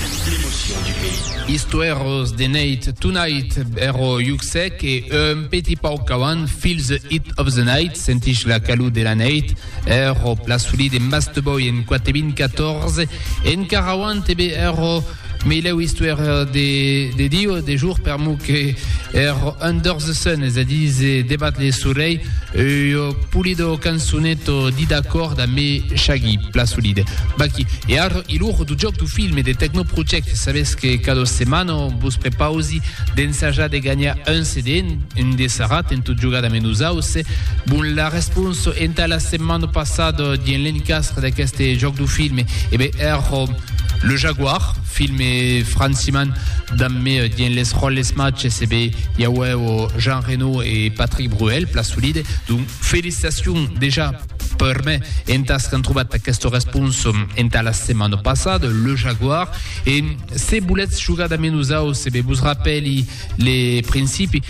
L'emotion du pays. Istoèros de Neit Tonight ero Hugh Sec e un petit pauc qu'avant Feel the Heat of the Night, Sentís la calor de la neit, ero Plasoli de Masteboy en 4.014 encara avant ebe ero Meilèu Istoèra de de Dio de jour per mo que ero Under the Sun, es a dire debat le solei, Ua pulido cançoneta dida còr da me Shaggy, plan solide. Baky, e ara i lor du jòc du film e de Techno Project, sabètz que cada setmana vos prepausi d'ensajar de ganhar un CD en de sarat en tot jogar damb nosaus? Bon, la responsa entà la setmana passada dien l'encastre d'aqueste jòc du film, e ben èra Le Jaguar. Film e Franciman damb me dien les ròles matges e be i auèvo Jean Reno e Patrick Bruel, plan solide. Donc felicitacion dejà per me entàs qu'an trobat aqueste respons entà la setmana passada, Le Jaguar. E se voletz jogar damb nosaus e be vos rapèli le principi,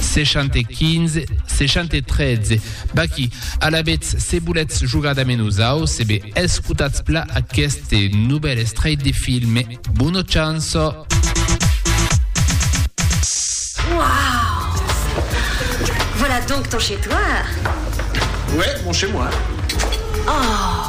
75 73 Baquí, alavetz se voletz jogar damb nosau se be escotatz pla aqueste novèl estrèit de filme Bono chanço! Wouaw Voilà donc ton chez toi Ouais, mon chez moi. Oh